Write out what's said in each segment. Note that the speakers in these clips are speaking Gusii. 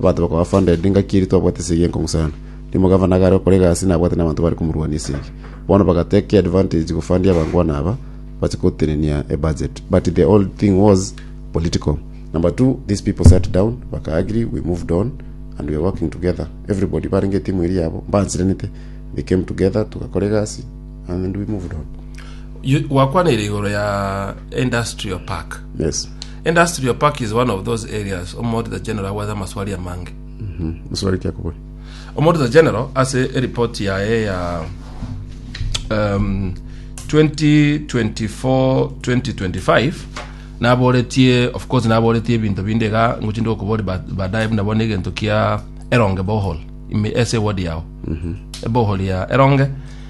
Abanto bakaba funded ngaki erio twabwate esegi enkong'u sana. Rimo gavana iga are okora egasi nabwate nabanto bare komorwania esegi. Bono bagatake advantage gofundia abangwana aba bache gotenenia ebudget. But the whole thing was political. Number two, these people sat down baka agree we moved on and we are working together. Everybody barenge etimu eri yabo mbansirenete. They came together tugakora egasi and we moved on. You- gwakwanaire igoro ya industrial park Yes. Industrial park is one of those areas Omouditor General agwete amaswali amange. Maswali ki akobori? Omouditor General ase eripoti yaye ya um, 2024-2025 naboretie of course naboretie ebinto binde iga ngochi ndokobori ba- baadaye buna bono egento kia eronge bohol ime ase ward yao ebohol ya eronge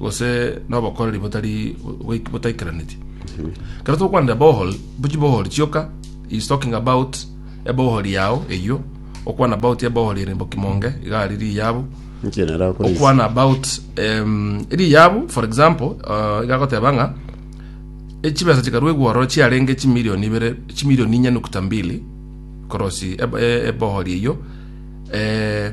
gose nobokoreri botari boik- botaikeraneti kero tokwanera bohol bochi bohol chioka is talking about ebohol yao eyio okwana about ebohol ere bokimonge iga ari riyabu Inche nara akora isi. okwana about em, riyabu for example uh, iga agoteba ng'a echibesa chikaruegwa ororo chiarenge chimilioni ibere chimilioni inya nukta mbili korosi eb- e- ebohol eyio eh,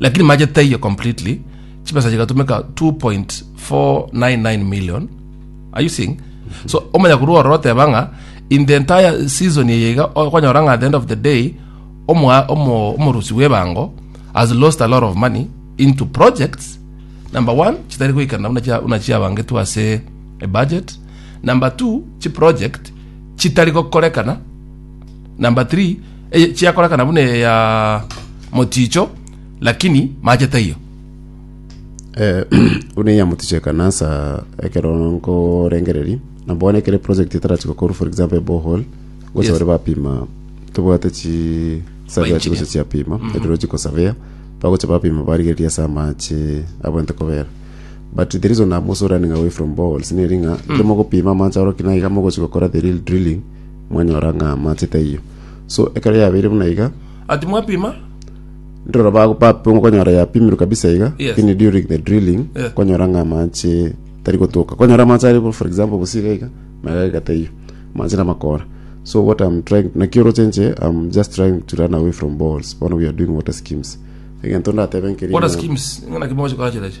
Lakini mache taiyo completely, chibesa chigatumeka 2.499 million are you seeing so omanya korwa ororo oteba ng'a in the entire season eye iga okonyora ng'a at the end of the day omwa- omo- omorusi bw'ebango has lost a lot of money into projects number one chitari goikana buna chia- buna chiabangetwe ase ebudget number two chiproject chitari gokorekana Number three, eye chiakorakana buna eye ya moticho lakini mache taiyo. Eh, buna ya moticho ekanasa ekero nkorengereria na bono ekere project etarati gokorwa for example a borehole gocha Yes. bare bapima tobwate chi surveyor engineer. chigocha chiapima hydrological surveyor bagocha bapima barigereria ase amache abwente kobera but the reason I'm also running away from boreholes neri ng'a mm. mogopima amache aro kinaiga mogochi gokora the real drilling Mwanyora ng'a amache taiyo. So, ekero yabeire buna iga, Ati mwapima? ndiro ba- bapimwa kwanyora yapimirwe kabisa iga, Yes. lakini during the drilling, Yes. kwanyora ng'a amache tari gotoka. Kwanyora amache ari, for example, bosi iga iga, magega iga taiyo. Amache namakora. So what I'm trying, naki oroche inche, I'm just trying to run away from boreholes. Bono we are doing water schemes. Egento ndatebe nkeri Water ng'a- schemes, ng'ana kimoche kachira iche.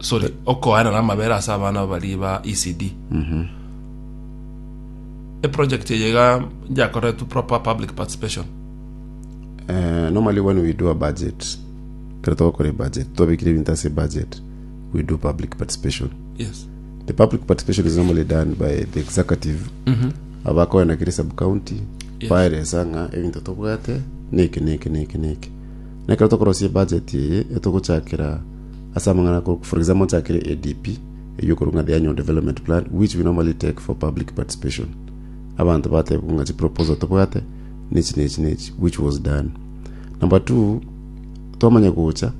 sorry okoanana amabere ase abana bari ba ECD eproject eye iga njakoretwe proper public participation Eh, normally when we do a budget kero togokora ebudget twabekire ebinto ase budget we do public participation yes the public participation is normally done by the executive abakoena kere sub county Yes. baeresa ng'a ebinto tobwate neke neke neke neke Na ekero tokorosia ebudget eye, etogochakera ase amang'ana ako, for example, mochakere ADP, eyio okorwa ng'a the annual development plan, which we normally take for public participation. Abanto batebwa ng'a chiproposal tobwate, nechi nechi nechi, which was done. Number two, twamanya gocha,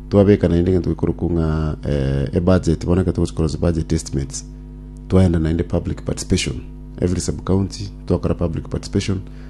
twabeka naende egento gekorokwa ng'a eh, ebudget, bono ekero togochia korosia budget estimates, twaenda naende public participation. Every sub-county, twakora public participation,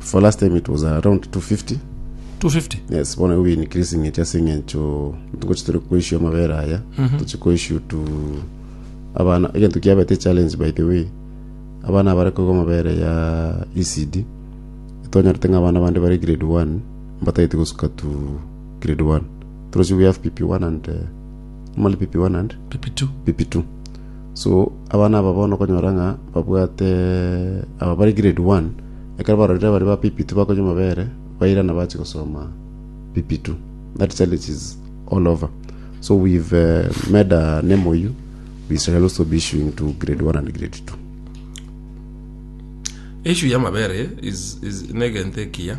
For last time it was around 250. 250 Yes, bono igo been increasing it ase eng'encho ntugochi tore koissue amabere aya tochi koissue to abana egento kiabete challenge by the way abana abare koigwa amabere ya ECD twanyorete ng'a abana bande bare grade 1 mbatagete gosuka to grade 1 torochi we have PP1 and uh, normally PP1 and pp2 PP2 So abana aba bono okonyora ng'a babwate aba bare grade one, ekero barorire baria ba PP2 bakonywa amabere, bairana bachia gosoma PP2. That challenge is all over. So we've uh, made a MOU, we shall also be issuing to grade one and grade two. issue y'amabere is, is negento ekiya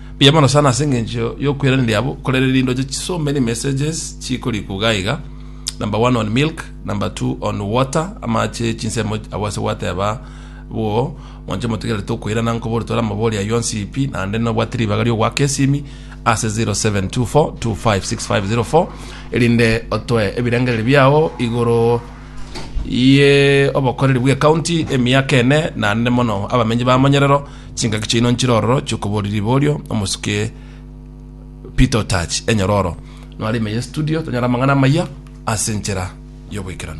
Mbuya mono sana ase engencho y'okweraneria abo, korende rinde oche so many messages chikorikwa iga iga, number one on milk, number two on water, amache, chinsemo abwo ase gwateba bwoo, monche motigerere tokoirana nkobore tore amabori ayio onsi pi, naende nobwate ribaga riogoaka esimi ase 0724256504 erinde otoe ebirengererio biao igoro ye obokoreri bw'ecounty, emiaka ene, naende mono abamenyi b'amonyerero, Chingaki chiaino nchire ororo chiokoboria riborio omosuke Peter Otach enyororo. Nore ime ye studio tonyore amang'ana amaya ase enchera y'ogoikeranu.